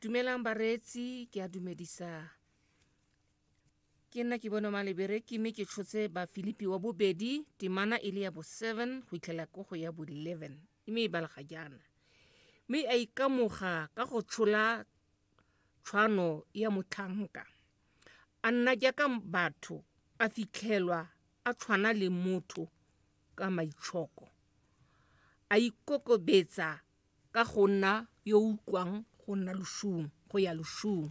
dumelang bareetsi ke a dumedisa ke nna ke bone malebereki mme ke tshotse bafilipi wa bobedi temana e le ya bo seven go itlhela ko go ya bo eleven mme e balega jaana mme a ikamoga ka go tshola tshwano ya motlhanka a nna jaaka batho a fitlhelwa a tshwana le motho ka maitshoko a ikokobetsa ka go nna yo o utlwang go nna loshung go ya loshung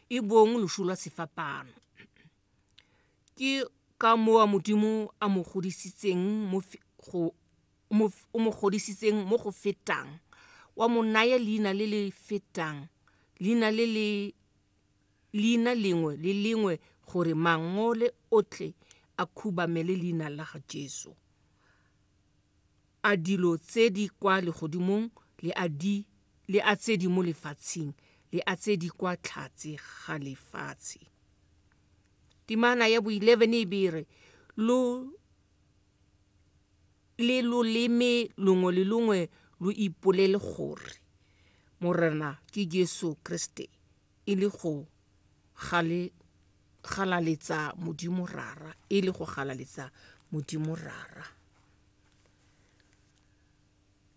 e bong lošu lwa sefapano ke ka moa modimo a mo godisitseng mo fe- go mo f- o mo godisitseng mo go fetang wa mo naya leina le le fetang leina le le leina lengwe le lengwe gore mangole otlhe a khubamele leina la ga jesu a dilo tse di kwa legodimong le a di le a tse di mo lefatsheng le a tse di kwa tlhatse ga lefatshe timana ya bo 11 e bere lo le loleme longwe le longwe lo ipolele gore morena ke jesu kriste e le go gale galaletsa modimo rara e le go galaletsa modimo rara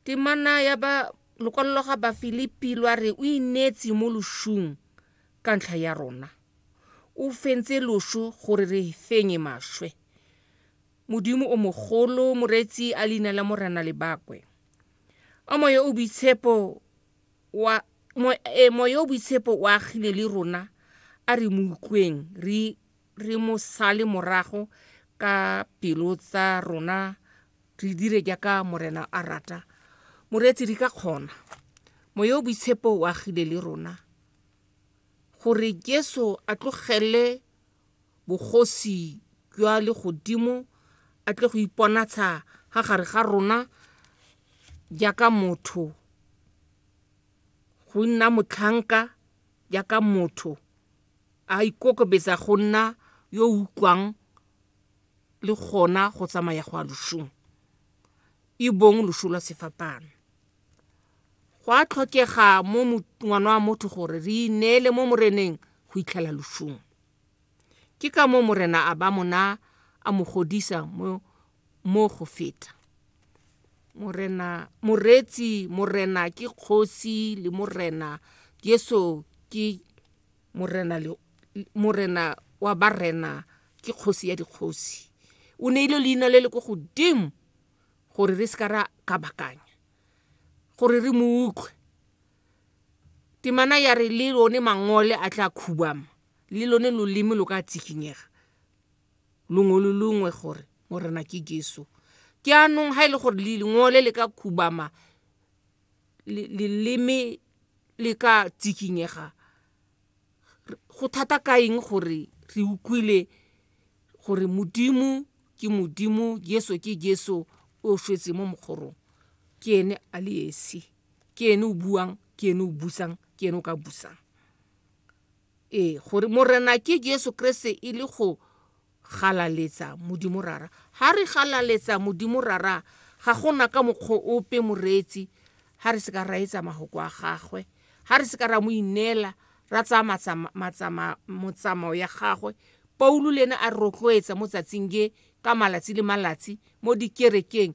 temana ya ba lokwalo lwa ga bafilipi lwa re o ineetse mo lošung ka ntlha ya rona o fentse lošo gore re fenye maswe modimo o mogolo moreetsi a leina la morena lebakwe a moya o boitshepo wa mo, e, moya o boitshepo o agile le rona a re mo utlweng re re mo sale morago ka pelo tsa rona re dire jaaka morena a rata moreetsi re ka kgona moya o boitshepo o agile le rona gore jesu a tlogelele bogosi jwa legodimo a tle go iponatsha ga gare ga rona jaaka motho go nna motlhanka jaaka motho a ikokobetsa go nna yo o utlwang le gona go tsamaya go a losong e bong loso lwa sefapano go a tlhokega mo mo- ngwana wa motho gore re ineele mo moreneng go itlhela losong Ke ka moo Morena a ba mo naa a mo godisa mo mo go feta. Morena, Moreetsi, Morena ke Kgosi le Morena. Yesu ke Morena le Morena wa barena, ke Kgosi ya dikgosi. O neile leina le le ko godimo gore re se ka ra kabakanya, gore re mo utlwe. Temana ya re le lone mangole a tla khubama, le lone loleme lo ka tsikinyega, longwe le longwe gore Morena ke Jesu. Ke anong ha e le gore lengole le ka khubama, leleme le ka tsikinyega, go thata ka eng gore re utlwile gore Modimo ke Modimo, Jesu ke Jesu o shwetse mo mokgorong, ke ene a le esi. ke ene o buang ke ene o busang ke ene o ka busang ee gore morena ke jesu kreste e le go galaletsa modimo rara ga re galaletsa modimo rara ga gona ka mokgwa ope moreetsi ga re se ka ra etsa magoko a gagwe ga re se ka ra mo ineela ra tsaya motsamao ya gagwe paulo le ene a rotloetsa mo tsatsing je ka malatsi le malatsi mo dikerekeng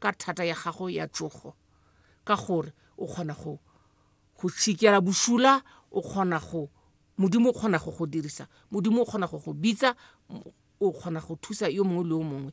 ka thata ya gago ya tsogo ka gore o kgona go go tšhikela bosula o kgona go modimo o kgona go go dirisa modimo o kgona go go bitsa o kgona go thusa yo mongwe le yo mongwe